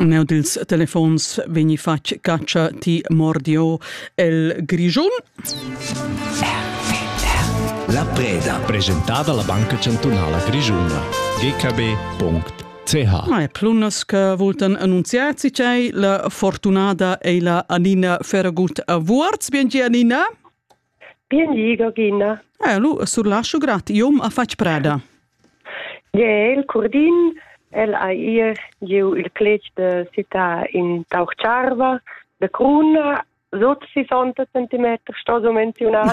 Neu dils telefons vegni fatg catscha ti mordio el Grischun. La preda. Presentada la Banca Chantunala Grischuna. gkb.ch Ma è plunas che voltan annunziati c'è la fortunata e la Anina Ferragut a Vuorz. Biengi Anina. Bien liga gina. Eh, lu surlaschu grad, iom a fatg preda. Je, il curdin, el ha ir giu il clec de città in Taucharva, de Cruna, sot 60 cm, sto so menziunar.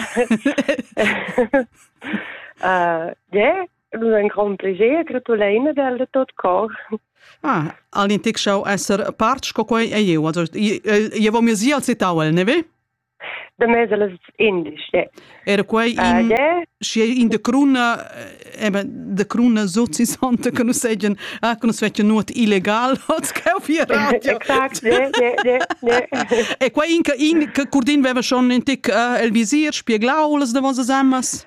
uh, je, lu ein grand pleger, gratuleina del de tot cor. Ah, alin tic schau esser part sco quei ei eu, also je vo mir si al citau el, ne ve? de mesa las indice. Era quei in, uh, schi in de cruna eba de cruna so si santa che nus segen ah che nus vecchia nuot illegal als cheu via radio. Exact, ne, ne, ne, E quei in in che curdin veva schon in tic uh, el visir spieglau las de vosas amas?